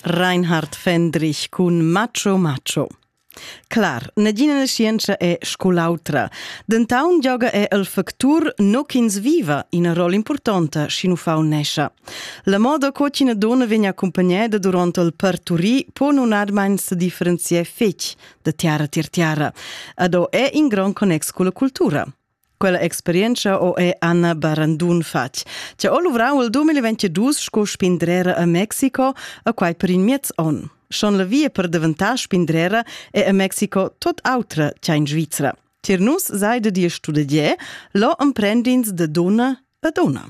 Reinhard Fendrich cun Macho Macho. Clar, negina nascienza è scol'autra. Dentaun gioga è el factur no ch'ins viva ina rolla importanta sch'in uffant nescha. La moda co ch'ina donna vegn accompagnada durant il parturì può nun admain se differenzier fetg da tiara tier tiara. Ado è in grand connex con la cultura. Quella experientscha ho e Anna Barandun fatg. Cha ho luvrau il 2022 sco spindrera a Mexico, a quai per in miez on. Schon la via per daventar spindrera è a Mexico tot autra cha in Svizra. Tier nus seide dir studegier, lo emprendins de dona a dona.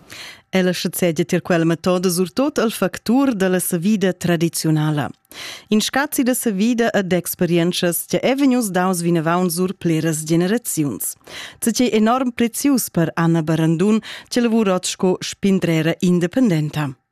Ella schazegia tier quella metoda surtot al factur dalla savida tradiziunala. In scazi da savida ed experientschas che è vegnius daus vinavon sur pleras generaziuns. Cei è enorm prezius per Anna Barandun, che lavura sco spindrera independenta.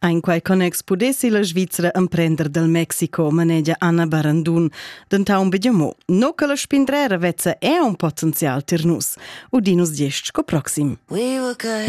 En quei connex pudessi la Svizra emprender dal Mexico, manegia Anna Barandun, dentaun begemo, no che la spindrera vezza è un potenzial tir nus, udinus gest sco proxim. We were good.